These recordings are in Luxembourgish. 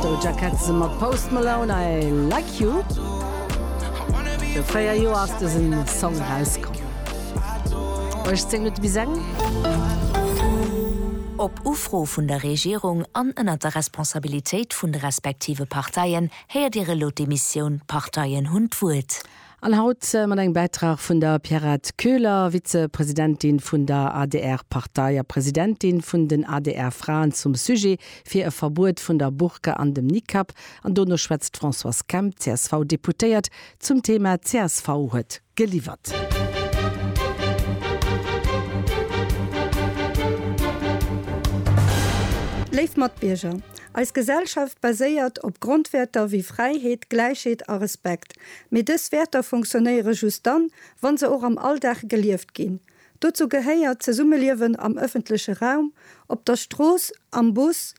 Doja Cat ze mat Post Malone I Like You. Viru 4 Joer ass dëse Song erauskomm. 18 Minutte bis eng. Op Ufro vun der Regierung an ënnert der Responsabilitéit vun de respektive Parteien héiert Dir elo d'Emissioun D'Parteien hunn d'Wuert. An haut mat engem Bäitrag vun der Pierrette Köhler, Vize-Presidentin vun der ADR-Partei a Presidentin vun den ADR-Fraen zum Sujet fir e Verbuet vun der Burka an dem Nikab. An dono schwätzt d'Françoise Kemp, CSV-Deputéiert, zum Thema csv huet geliwwert. Léif Matbierger, Eis Gesellschaft baséiert op Grondwäerter wéi Fräiheet, Gläichheet a Respekt. Mee dës Wäerter funktionéiere just dann, wa se och am Alldag gelieft ginn. Dozou gehéiert d'Zesummeliewen am ëffentleche Raum, op der Strooss, am Bus,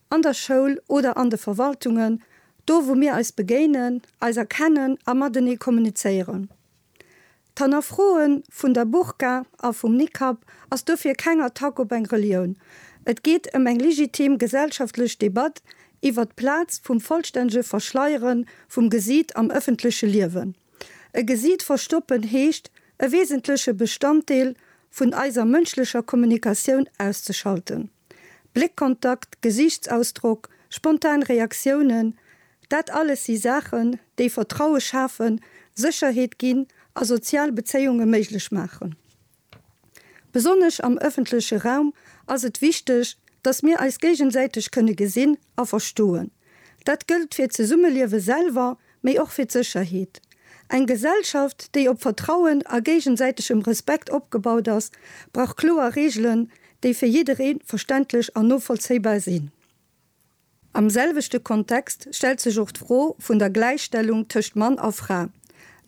an der Schoul oder an de Verwaltungen, do wou mir eis begéinen, eis erkennen a matenee kommunizéieren. D'Hannerfroe vun der Burka a vum Nikab ass dofir keng Attack op eng Relioun. Et geet ëm eng legitim gesellschaftlech Debatt iwwert d'Plaz vum vollstännege Verschleiere vum Gesiit am ëffentleche Liewen. E Gesiit verstoppen heescht, e wesentleche Bestanddeel vun eiser mënschlecher Kommunikatioun auszeschalten. Bléckkontakt, Gesiichtsausdrock, spontan Reaktiounen, dat alles si Saachen, déi Vertraue schafen, Sécherheet ginn a sozial Bezéiunge méiglech maachen. Besonnesch am ëffentleche Raum ass et wichteg, dass mir eis géigesäiteg kënne gesinn a verstoen. Dat gëllt fir d'Zesummeliewe selwer, mee och fir d'Sécherheet. Eng Gesellschaft, déi op Vertrauen a géigesäitegem Respekt opgebaut ass, brauch kloer Reegelen, déi fir jidderee verständlech an novollzéibar sinn. Am selwechte Kontext stellt sech och d'Fro vun der Gläichstellung tëscht Mann a Fra.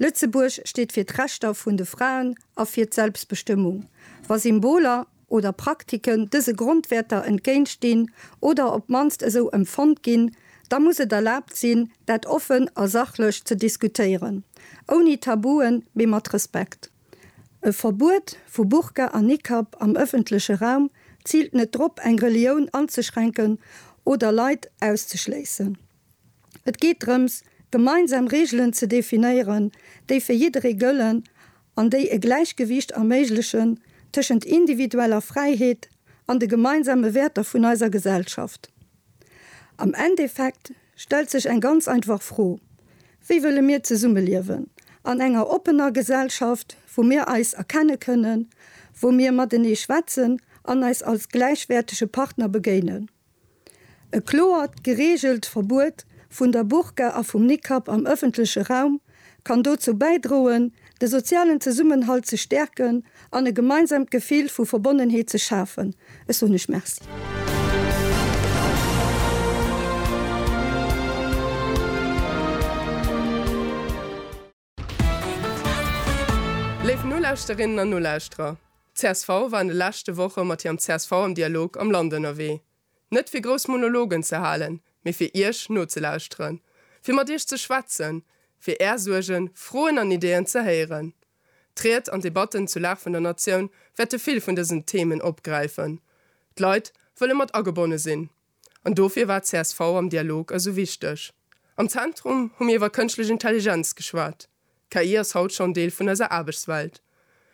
Lëtzebuerg steet fir d'Rechter vun de Fraen a fir d'Selbstbestëmmung. Wa Symboler, oder Praktiken dëse Grondwäerter entgéintstinn oder op d'mannst esou empfonnt ginn, da muss et erlaabt sinn, dat offen a sachlech ze diskutéieren, ouni Tabuen, mee mat Respekt. E Verbuet vu Burka a Nikab am ëffentleche Raum ziilt net drop, eng Relioun anzeschränken oder Leit auszeschléissen. Et geet drëms, gemeinsam Reegelen ze definéieren, déi fir jidderee gëllen an déi e Gläichgewiicht erméiglechen tëschent individueller Fräiheet an de gemeinsame Wäerter vun eiser Gesellschaft. Am Endeffekt stellt sech eng ganz einfach Fro, Wéi wëlle mir zesummeliewen? An enger oppener Gesellschaft, wou mir eis erkenne kënnen, wou mir matenee schwätzen an eis als gläichwäertege Partner begéinen. E kloert, gereegelt Verbuet vun der Burka a vum Nikab am ëffentleche Raum kann dozou bäidroen, de sozialen Zesummenhalt ze stäerken an e gemeinsamt Gefill vu Verbonnenheet ze schafen. Ech soen lech Merci. Léif Nolauschterinnen an Nolauschterer, Csv war an de leschte Woche mat hirem csv am Dialog am Land ënnerwee. Net fir grouss Monologen ze halen, mee fir Iech nozelauschteren, fir mat Iech ze schwätzen, fir Är Suergen, Froen an Ideen ze héieren. D'Ried an d'Debatten zu Lag vun der Natioun wäerte vill vun dësen Themen opgräifen. D'Leit wëlle mat agebonne sinn. An dofir war csv am Dialog esou wichteg. Am Zentrum hu mir iwwer kënschtlech Intelligenz geschwat. KI ass haut schonn Deel vun eiser Aarbechtswelt.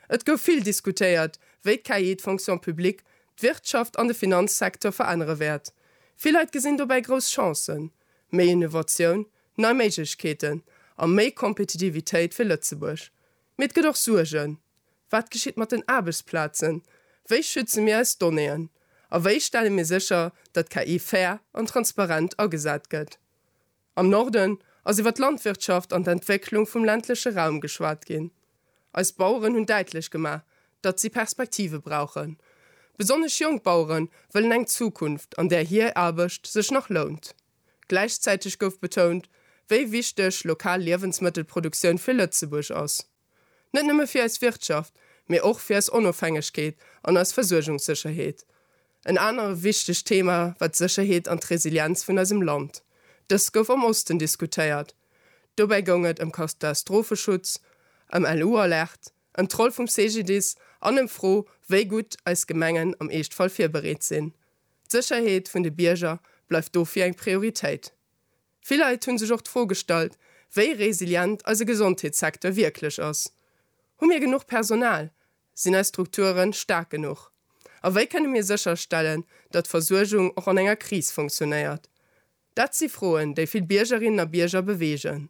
Et gouf vill diskutéiert, wéi d'KI d'Fonction publique, d'Wirtschaft an de Finanzsecteur verännere wäert. Vill Leit gesinn dobäi grouss Chancen, méi Innovatioun, nei Méiglechkeeten a méi Kompetitivitéit fir Lëtzebuerg. Mee et gëtt och Suergen, Wat geschitt mat den Aarbechtsplazen? Wéi schütze mir eis Donnéeën? A wéi stelle mir sécher, datt KI fair an transparent agesat gëtt? Am Norden ass iwwer d'Landwirtschaft an d'Entwécklung vum ländleche Raum geschwat ginn. Eis Baueren hunn däitlech gemaach, datt si Perspektive brauchen. Besonnesch jonk Bauere wëllen eng Zukunft, an där hier Aarbecht sech nach lount. Gläichzäiteg gouf betount, wéi wichteg lokal Liewensmëttelproduktioun fir Lëtzebuerg ass. Net nëmme fir eis Wirtschaft, mee och fir eis Onofhängegkeet an eis Versuergungssécherheet. En anere wichtegt Thema war d'Sécherheet an d'Resilienz vun eisem Land. Dëst gouf am Osten diskutéiert. Dobäi goung et ëm Katastropheschutz, ëm LU-Alerte, ëm d'Roll vum CGDIS an ëm d'Fro, wéi gutt eis Gemengen am Eeschtfall virbereet sinn. D'Sécherheet vun de Bierger bleift dofir eng Prioritéit. Vill Leit hu sech och d'Fro gestallt, wéi resilient eise Gesondheetssecteur wierklech ass. Hu mir genuch Personal? Sinn eis Strukture staark genuch? A wéi kënne mir sécherstellen, datt d'Versuergung och an enger Kris funktionéiert? Dat si Froen, déi vill Biergerinnen a Bierger beweegen.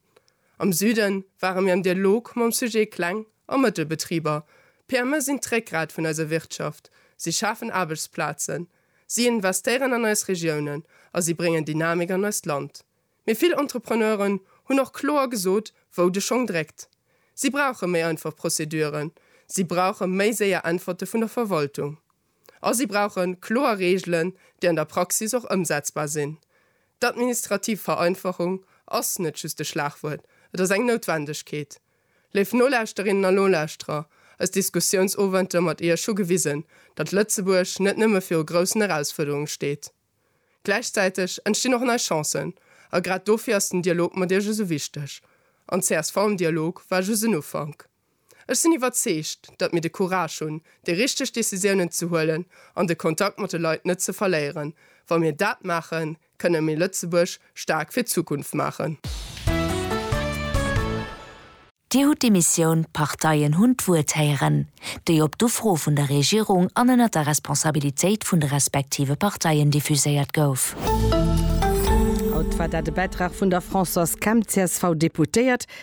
Am Süde ware mir am Dialog mam Sujet Kleng a Mëttelbetriber. PME sinn d'Réckgrat vun eiser Wirtschaft, si schafen Aarbechtsplazen, si investéieren an eis Regiounen a si bréngen Dynamik an eist Land. Mee vill Entrepreneuren hunn och kloer gesot, wou de Schong dréckt. Si brauche méi einfach Prozeduren, si brauche méi séier Äntwerte vun der Verwaltung. A si brauche kloer Reegelen, déi an der Praxis och ëmsetzbar sinn. D'administrativ Vereinfachung ass net just e Schlagwuert, et ass eng Noutwendegkeet. Léif Nolauschterinnen a Nolauschterer, eis Diskussiounsowenter mat Iech hu gewisen, datt Lëtzebuerg net nëmme viru groussen Erausfuerderunge steet. Gläichzäiteg entstinn och nei Chancen. A grad dofir ass den Dialog mat Iech esou wichteg. An csv am Dialog war just en Ufank. Ech sinn iwwerzeegt, datt mir de Courage hunn, déi richteg Decisiounen ze huelen an de Kontakt mat de Leit net ze verléieren. Wa mir dat maachen, kënne mir Lëtzebuerg staark fir d'Zukunft maachen. Dir hutt déi Missioun, d'Parteien hunn d'Wuert héieren, déi op d'Ufro vun der Regierung an ënnert der Responsabilitéit vun de respektive Parteien diffuséiert gouf. Haut war dat e Bäitrag vun der Françoise Kemp, csv-Deputéiert,